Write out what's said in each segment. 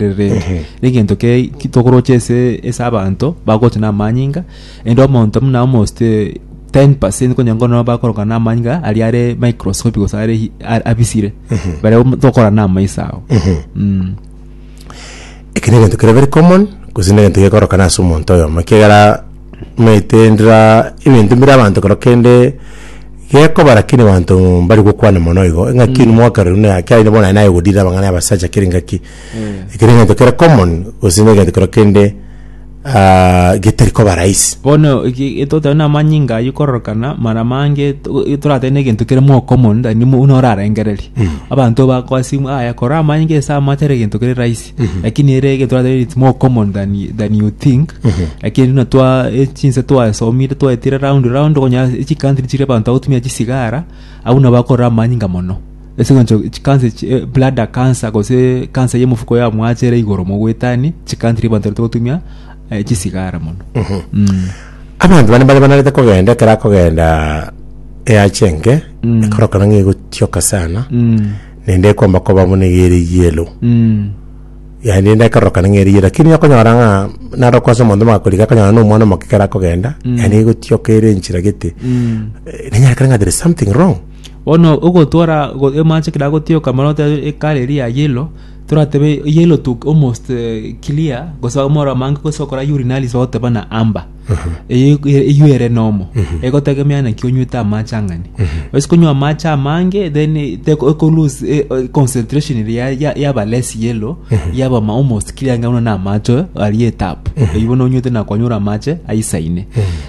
rirengereretie. Ehe. Egento ke ki- tokoroche ase ase abanto bagocha na amanyinga, ende omonto buna omosike 10% konya nko no bakoroka na amanyinga aria are microscopic gose are hi- a- abisire. Baria omo- tokora na amaiso ao. Mm. Eke negento kere very common, gose negento gekorokana ase omonto oyomo, ekiagera Maetendera ebinto mbire abanto kero kende gekoba lakini abanto mbari gokwana mono igo engaki ere mwaka rero na kiagera inche bono nari nayegodire abang'ana abasacha kere engaki ekero egento kere common gose na egento kero kende ah, getari koba rahisi. bono eki- etotebe na amanyinga aywo kororokana mara mange to- e- toratebe na egento kere more common than buna orarengereria abanto bakoa simu aya kora amanyinga ase amache ere egento kere rahisi. lakini ere egetwara tari it's more common than, y- than you think lakini runa twa e- chinse twasomire twaetire round round okonya chicountry chiri abanto agotumia chisigara abwo nabo bakorora amanyinga mono ase eng'encho chikanse chi eh, bladder cancer gose cancer y'omofuko yamwacha ere igoro mogwetani chicountry abanto barete gotumia eh, chisigara mono Mm. abanto bane bare banarete kogenda ekero akogenda eache enke ekorokana ng'a egotioka sana Mm. naende ekomba koba buna eye ere yellow yaani ende ekerorokana ng'a ere yellow lakini okonyora ng'a naroka ase omonto omogakorigia akonyora na omwana omoke ekero akogenda yaani egotioka ere enchera gete Eh, nenyarekana ng'a there is something wrong bono ogotwara go- emache ekero agotioka mono otebe ekara eria ya yellow toratebe yellow to almost eh, clear gose omoro amange gose okora urinalysis bagoteba buna amber Eye- eywo ere nomo egotegemea naki onywete amache ang'ani ase konywa amache amange then teko eko lose eh, eh, concentration ere ya- ya- yaba less yellow yaba ma- almost kira ang'e buna na amache aria etapu eywo bono onywete nakonyora amache aisaine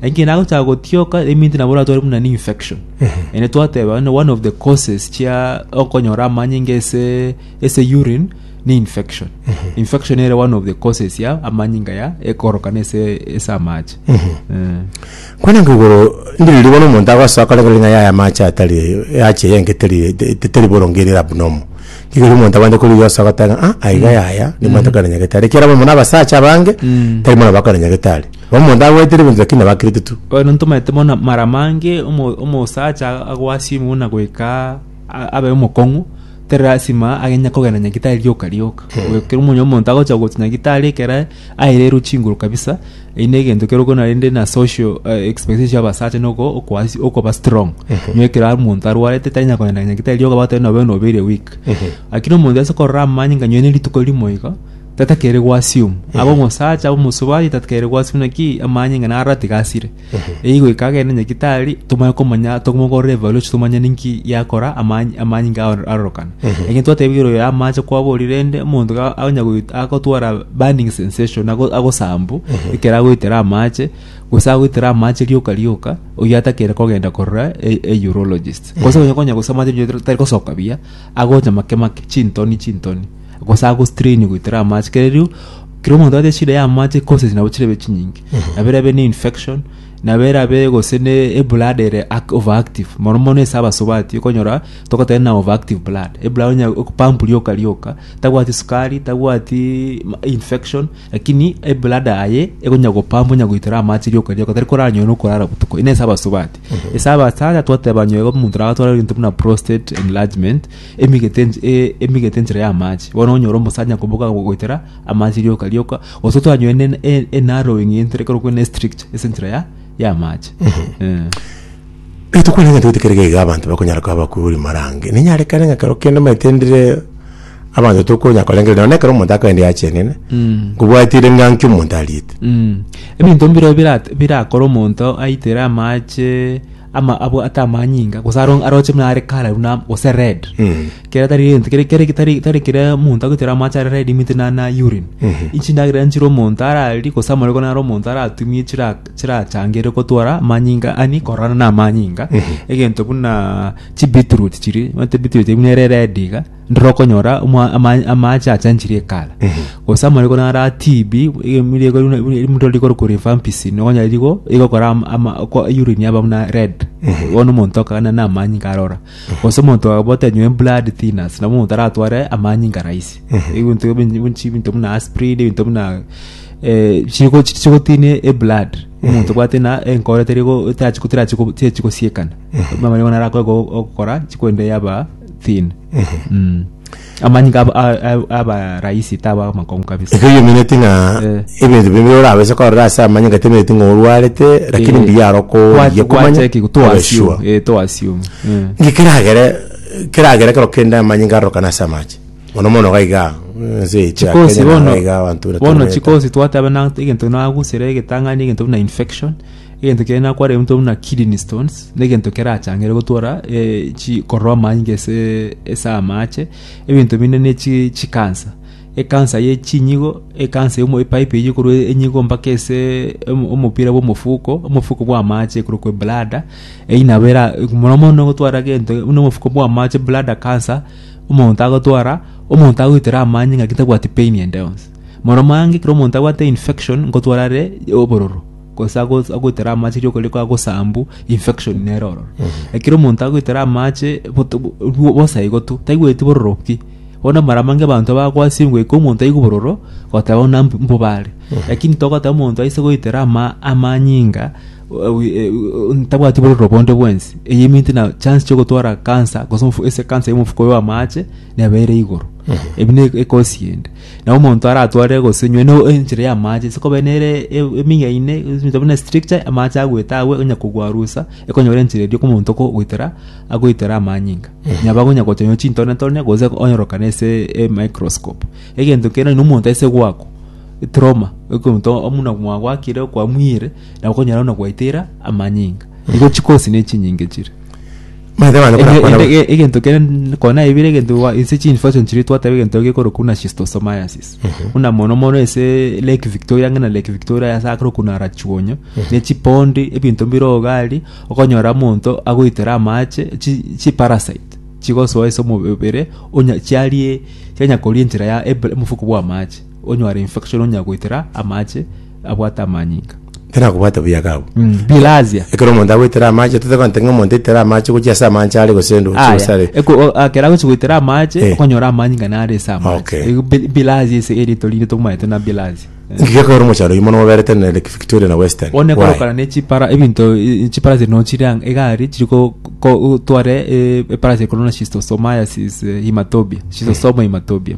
ekero nagochaka gotioka eminti nabo oratware buna ne infection ere twateba one one of the causes chia okonyora amanyinga ase ase urine ne infection infection ere one of the causes ya amanyinga ya ekorokana ase ase amache Eh. Kwana nkigoro ndiriria bono omonto agosoa korengera ng'a yaya amache atari yache yenge teri te- te- teri boronge eri abnormal. Igoro omonto abande korigia osa goteba ng'a ah aiga yaya nimanyete kare nyagetari. Ekiagera abamwe na abasacha abange tari mana bakare nyagetari. Bo omonto agwetire ebinto lakini nabakirete tu. Bono ntomanyete bono mara mange omo- omosacha agoa simu buna goika abe omokong'u, tari lasima agenye kogenda nyagitari rioka rioka. Oyo kero omonye omonto agocha gocha nyagitari ekero airerwe chinguru kabisa, eyi na egento kero okona rende na social eh, expectation chia abasacha na oko- okoasi- okoba strong. Nyo ekero ari omonto arwarete tanyara kogenda nyagitari rioka bagoteba nobe buna obeire weak. Lakini omonto ase korora amanye ng'a nyoine rituko rimo iga, tatakeire goassume. Abe omosacha, abe omosubati tatakeire goassume naki amanye ng'a narora tiga asire. Eyio goika agende nyagitari tomanye komanya tomogorere evaluation tomanye ninki yakora amany- amanyinga ao arorokana egento twatebigire oyo amache kwaborire ende omonto ga- agonya goit- agotwara burning sensation ago- agosambu ekero agoitera amache gose agoitera amache rioka rioka oyio atakere kogenda korora e- e- urologist gose onye konya gose amache onye tari gosoka buya agocha make make chintoni chintoni gose agostrain goitera amache kere riu kera omonto abe shida ya amache causes nabo chirebe chinyinge. nabera abe ne infection nabera abe gose ne eblood ere ac- overactive mono mono ase abasubati okonyora togotera na overactive blood eblood onya pump rioka rioka tabwati sukari tabwati ma- infection lakini eblood aye ekonya gopump onya goitera amache rioka rioka tari koranywa nokorara botuko ere ase abasubati ase abasacha twateba nyoigo omonto nabatware ebinto buna prostate enlargement emigete ench- e- emigete enchera y'amache bono onyore omosacha nkoboka gogoitera amache rioka rioka gose twanyoine en- en- enarrowing entire ekero kwena estrict ase enchera ya y'amache Eh. Rituko riria ntagete kerige iga abanto bakonyara koba abakuri marange. Ninyarekane ng'a ekero kende omanyete ndire abanto tokonya korengereria nonye na ekero omonto akaenda yachenene. Mm. Nkobwatire ng'a nki omonto ariete. Mm. Ebinto mbiro birate- birakore omonto aitere amache ama abwo ate amanyinga gose aro- aroche buna are kara buna gose red kere tari gento kere kere tari tari kere omonto agoitera amache are red imite na na urine inchi ndagera nchire omonto ararie gose amariko naro omonto aratumie chira chirachangere gotwara amanyinga ani korana na amanyinga egento buna chibeetroot chiri omanyete beetroot buna ere red iga Ndora okonyora omwa- ama- amaache achanchire ekara gose amariko nara tibi mtori rikoro kurifa mpisi nonya rigo igokora am- ama- ko- urine yaba buna red bono omonto akagenda na amanyinga inga arora gose omonto agobota enywe emblood thinners nabo omonto aratware amanyinga inga rahisi ebinto ebi bi- bi- chibinto buna asprin ebinto buna eh, chigo chigotinia eblood omonto obwate ng'a enkoro teri go- tachi- terachi go- terachi gosiekana buna amariko narakore go- gokora chikorende yaba thin mm. amanyinga aba- a- a- aba rahisi taba amakongu kabisa igo yomineti ng'a Eh. ebinto bimbe orabese korora ase amanyinga temineti ng'a orwarete lakini Eh, mbuya aro kwa- koyia komanya kwacheki to tobe assume, sure eh, to assume, eh. ngi keragere keragere kero kende amanyinga arorokana ase amache mono mono gaiga ase echi ya chikosi Kenya na bono gaiga abanto bono batumete. chikosi twateba na egento nagusire egetang'ani egento buna infection Egento kiaye nakwarire omonto buna kidney stones, na egento kerachangere gotwara eh, chi korora amani inga ase ase amache, ebinto binde ne chi chi cancer. Ekansa ye chinyigo, ekansa yomo epipe eyio ekorwa enyigo mpaka ase omo- omopira bwa omofuko, omofuko bwa amache ekorokwa ebladder, eyio nabo era mono mono ogotwara gento buna omofuko bwa amache bladder cancer, omonto agotwara, omonto agoitera amanyinga ngaki tabwati pain ende yonsi. Moro mange ekero omonto abwate infection, ngotwara are obororo. gose ago- agoitera amache rioko rire kwagosambu infection nere ororo ekero omonto agoitera amache boto- bo- bo- bosa igo tu taigweti bororo pi bono mara mange abanto bakwasire goika omonto aigwe bororo goteba buna mb- mbobare lakini togoteba omonto aise goitera ama amanyinga o- e- o- ntabwati bororo bonde bwensi eye eminti na chance chiogotwara cancer gose omofu ase ecancer ya omofuko oyo amache neba ere igoro ebi ne ecause ende. Na omonto aratware gose nywe no enchera ya amache sikobe nere e- emiga ine eminto buna stricture amache agwete agwe onya kogwa rusa ekonyora enchera erio kwa omonto ko goitera agoitera amanyinga nyaba gonya gocha nywa chintone tone gose onyorokane ase e microscope egento kere na omonto ase gwako etrauma ekonto omuna mwagwakire kwamuyire na okonyora buna gwaitera amanyinga igo chikosi ne chinyinga chire. Maete bana Ege- barakwana ege- ege- egento kere n- kona ebire egento wa- ase chinfection chiri twateba egento gekorokwa buna schistosomiasis buna mono mono ase lake victoria ng'ina lake victoria yase akore okunara chionyo ne chipondi ebinto mbire ogari okonyora omonto agoitera amache chi- chiparasite chigosoa ase omobere onya chiarie chianyakoria enchera ya eb- omofuko bwa amache onyware infection onyagoitera amache abwate amanyinga. Ekero akobwate buya iga abwo. Bilharzia. Ekero omonto agoitera amache, totagonte ng'a omonto aitere amache gochia ase amache are gose ndo- Aya, gose are. eko- o- akera agochi goitera amache Eh. okonyora amanyinga nare ase amache Okay. Ego bi- bilharzia ase erito rinde tomaete na bilharzia Inki gekorwa mochando oyio mono moberete na Lake Victoria na Western? one Why? korokana ne chipara ebinto i- chipara chiri no chiri ang- egari chiri ko- ko- tware eh, eparasi ekorwa na schistosomiasis eh, hematobia schistosomal hematobia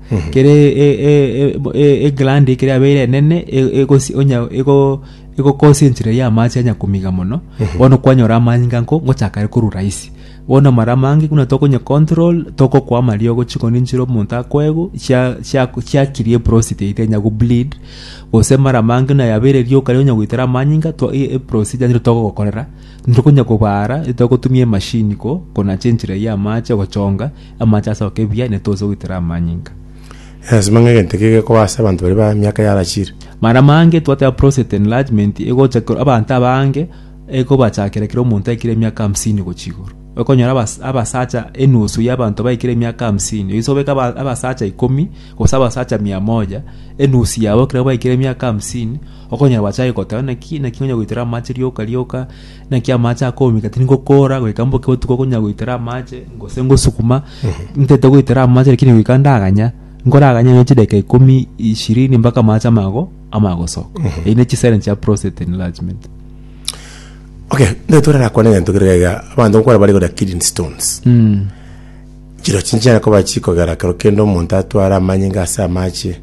kere e- e- e- ebo- e- egrandi ekere yabeire enene e- egosi- onya- ego- egokosia enchera ya amache anya komiga mono bono kwanyora amanyinga nko ngochaka are korwa rahisi bono amara amange buna tokonya control togokwama riogo chikoni nchire omonto akoegwe chia- chia- chiakiria eprositi yaito enya gobleed gose mara amange buna yabeire rioka riria onya goitera amanyinga to e- e- eprosija nigo togogokorera ntokonya kobara etogotumia emashini ko konacha enchera ya amache gochonga Amache asoke buya, ne toise goitera amanyinga. Egesima ng'egento eke gekoba ase abanto baria ba miaka yarachire. Mana mange twateba prostate enlargement egocha kero abanto abange ekobachakera kera omonto aikire emiaka hamsini gochia igoro. Okonyora abas- abasacha enusu ya abanto baikire emiaka hamsini oise obeke aba- abasacha ikomi gose abasacha mia moja enusu yabo ekero baikire emiaka hamsini okonyora bachake goteba naki naki onye goitera amache rioka rioka Naki amache akomika tindi ngokora goika mboke botuko konya goitera amache gose ngosukuma ntete goitera amache lakini goika ndaganya nkoraganya no chideka ikomi ishirini mpaka amache amago amagosoka eyi ne chisera chia prostate enlargement okay ntorekwane egento kere gaiga abanto nkwana bare gora kidney stones mm. Chirochio nchiana koba chikogera ekero kende omonto atware amanyinga ase amache,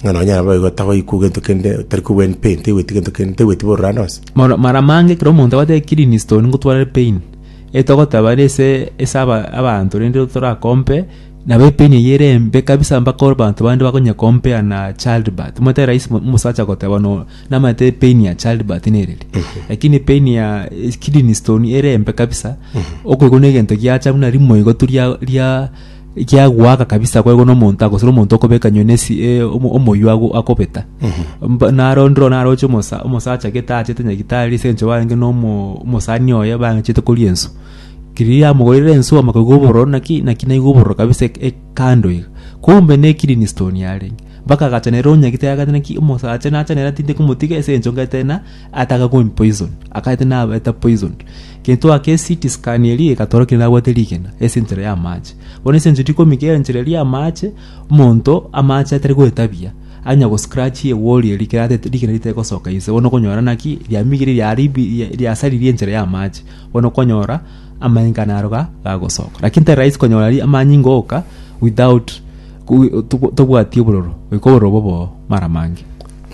ng'a nonye naboigo tagoikwa gento kende, tari kobua in pain, taigweti gento kende, taigweti bororo ande onsi. Mara mara mange ekero omonto agotebiwa clean stone ngotware pain, etogoteba are ase ase aba abanto rende torakompe, nabo epain eyio ere embe kabisa mpaka abanto bande bakonye compare na childbirth. Omanyete raisi omosacha goteba no. Namanyete pain ya childbirth nereri lakini pain ya eh, kidney stone ere embe kabisa okoigwa na egento giacha buna rimoigo tu ria ria giagwaka kabisa kwaigwa na omonto agosira omonto okobeka nyoni esi eh, omo- omoywa ago- akobeta Mba- naro ndiro naro oche omosa- omosacha gete achete nyagitari ase eng'encho barenge na omo- omosani oye bang'echete koria ensu keri yamogoire ensu amakaigwa obororo naki naki naigwa obororo kabisa ek- ekando iga kumbe ne kidney stone yarenge Bakagachanera onyagete agachete naki omosacha nachanera tindi komotiga ase encho ngete na ataka komi poison akagete na beta poison kento ake CT scan eri egatoro kende abwate rigena ese enchera ya mache bono ese encho tikomi ke enchera ya mache omonto amache atari goetabia anya go scratch ye wori eri kerate rigena rite gosoka ise bono okonyora naki riamigire riari bi riasariri enchera ya mache bono okonyora Amanyinga naroga gagosoka. Lakini tari rahisi konyora ri amanyinga oka without tobwati obororo. Goika obororo bobo mara mange.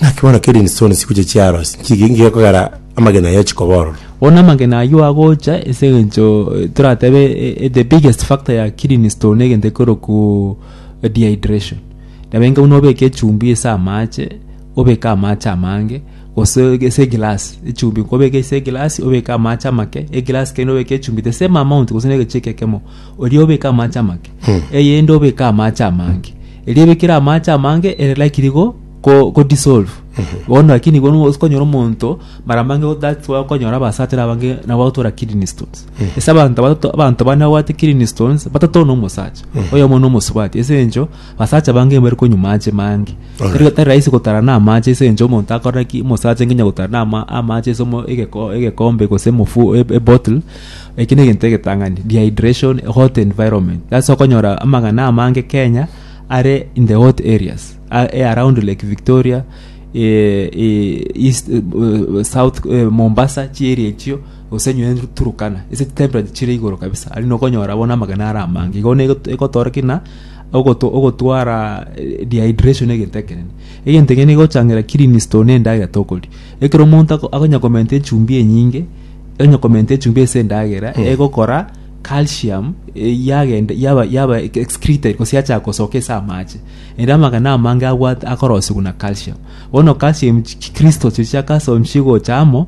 Naki bono kerindi stone sigocha chiarosi chiki ngekogera amagena aye chikoba ororo. Bono amagena ayio agocha ase engencho toratebe the biggest factor ya kidney stone egento ekero ku dehydration. Nabe enka buna obeke echumbi ase amache obeke amache amange. Gose ase egilass echumbi nkobeke ase egilass obeke amache amake egilass kende obeke echumbi the same amount gose na egechiko ekemo oria obeke amache amake eyende obeke amache amange eria ebekire amache amange ere likely igo ko ko dissolve bono lakini igo nigo okonyora omonto mara mange that's why okonyora abasatire abange nabo bagotwara kidney stones ase abanto batato abanto bane babwate kidney stones batato na omosacha oyomo na omosubati ase eng'encho Abasacha bange mbari konywa amache mange. Alright. Tari tari rahisi gotara na amache ase encho omonto akora ki omosacha nginya gotara na ama- amache ase omo- egeko- egekombe gose mofu e- e bottle. Eki na egento egetang'ani dehydration, hot environment. Ase okonyora amang'ana amange Kenya are in the hot areas a- e around Lake Victoria eh, eh, east eh, eh, south eh, Mombasa chi area echio gose nyo en- Turkana. Ase chitemperature chire igoro kabisa. Ari nokonyora bono amagena are amange. Igo nigo egotoora ki buna Ogoto- ogotwara eh, dehydration egento ekenene egento ekenene egochangira kidney stone endagera tokoria ekero omonto ako- akonya komenta echumbi enyinge onya komenta echumbi ase endagera egokora calcium eh, yagenda yaba yaba ex- excreted gose yacha gosoka ase amache ere amagena amange abwate akorosiwa na calcium bono calcium chi- chi- crystals echi chia calcium chigocha amo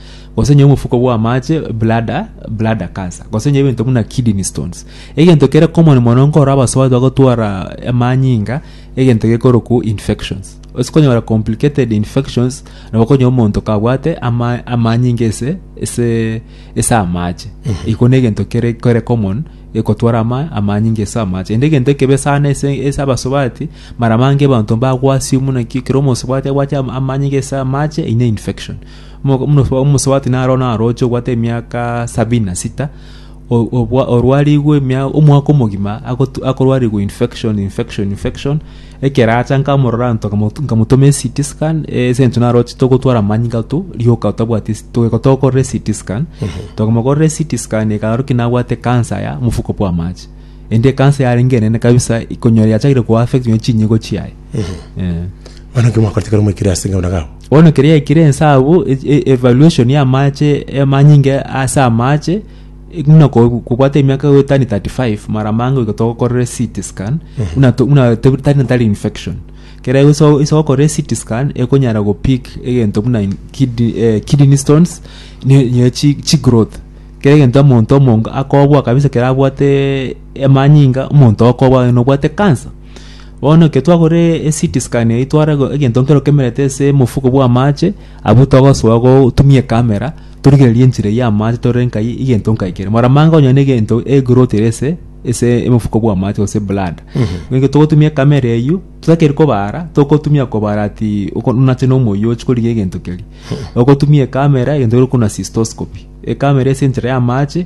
gose onye omofuko bw'amache bladder bladder cancer gose onye ebinto buna kidney stones egento kere common mono nkoro abasoe bagotwara amanyinga egento gekorokwo infections ase konyora complicated infections nabo okonywa omonto kabwate ama amanyinga ese ese ese amache iko na egento kere kere common egotwara ama amanyinga ase amache ende egento ekebe sana ase ase abasubati mara mange abanto mbagwasio buna ki ekero omosubati agwachire ama- amanyinga ase amache ine infection Omo- omoso- omosubati naro narooche obwate emiaka sabini na sita o- obwa- orwarigwe emia- omwaka omogima agotu- akorwarigwa infection infection infection ekero acha nkamorora ntoka motu- nkamotoma ect scan ase eng'encho narooche togotwara amanyinga ato rioka tabwati ase toyeka tokorera ect scan tokomokorera ect scan ekaorokia nabwate ekansa ya mofuko bw'amache ende ekansa yarenge enene kabisa ekonyora yachakire koaffect nonya chinyigo chiaye Eh. Bono nki mwakorete ekero mwaikire ase eng'encho nagabo? bono keri yaikire ense abwo e- e- evaluation ya amache amanyinge ase amache e- buna ko- kobwate emiaka goetani 35 mara mange goika togokorere CT scan buna to- buna te- tari natari infection kere iso iso okorere CT scan ekonyara go pick egento buna in- kidney eh, kidney stones ne ne chi- chigrowth kere egento omonto omonge akobua kabisa kere abwate amanyinga omonto okobua nobwate cancer. Bono ekero twagora eCT scan eyio tware egento nkere okemerete ase omofuko bwa amache abwo togosoa gotumia ecamera torigererie enchera eyio ya amache torore nkai egento nkai kere maramange onye na egento egrowth ere ase ase omofuko bwa amache gose ebladder ekero togotumia ecamera eyio totakeire kobara togotumia kobara ati oko buna ase omoyio ochi korigia egento keria ogotumia ecamera egento keria okona cystoscopy ecamera ase enchera ya amache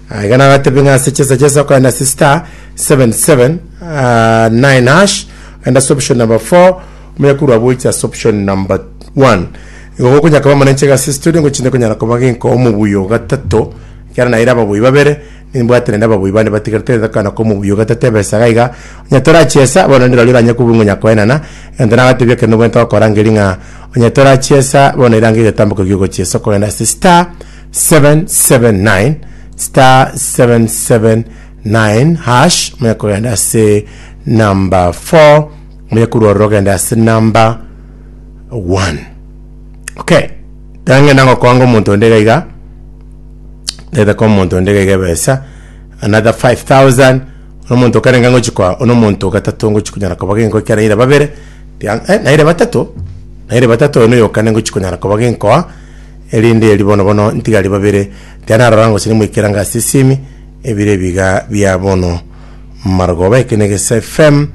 Ah, iga nagatebe ng'a ase chesa chesa okogenda ase star 77 ah, 9 hash ogenda ase option number 4 omonyakurwa boiche ase option number 1 igo gokonyaka koba manenche iga ase studio ngochinde konyara koba genko omobuyi o gatato ekero naire ababuyi babere nimbwate naende ababuyi bane batigarete ngakana ko omobuyi o gatato ebesa iga iga onye torachiesa bono ndiro riria oranye kobua ngonya koenana egento nagatebia ekero nobwate gokora ngeri ng'a onye torachiesa bono erange egetamboke giogochiesa okogenda ase star 779 star 779 hash monya kogenda ase number 4 monya korwarora ogenda ase number 1 okay tangenda ngokoanga omonto onde gaiga ndete kwa omonto onde gaiga ebesa another 5000 omonto okarenge ngochi kwa ono omonto gatato ngochi konyara koba genko ekiagera naira babere ria- eh, naira batato naira batato oyo noyokane ngochi konyara koba genkoa Erinde erio bono bono ntigari babere, tiga narora ngosiria moikera ngasisiemi ebire ebiga bia bono marogoba. Eke negesa FM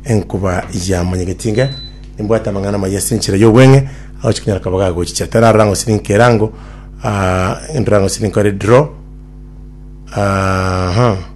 enkuba ya monyegeti inga nimbwate amang'ana amaya ase enchera y'obweng'e agochi konyara koba gagochicha. Tiga narora ngosiria nkera ango ah, ndora ngosiria nkore draw aha.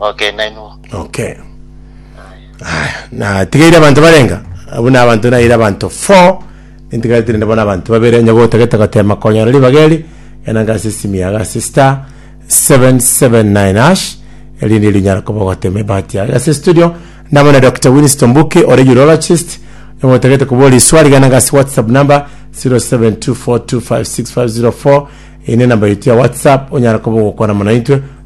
Okay, nainwo. Okay. Aya, natigeire abanto barenga abwo na abanto naire abanto 4 ntigaretire nde bono abanto babere onye gotagete gotema konyora ribaga eri genda ngase esimi yago ase star 779 hash erinde erio onyara koba ogotema ebahati yago ase studio namo na Dr. Winston Mbuki ore urologist onye gotagete koboria iswari genda ngase whatsapp number 0724256504 eye ne namba yaito ya whatsapp onyara koba ogokwana mono intwe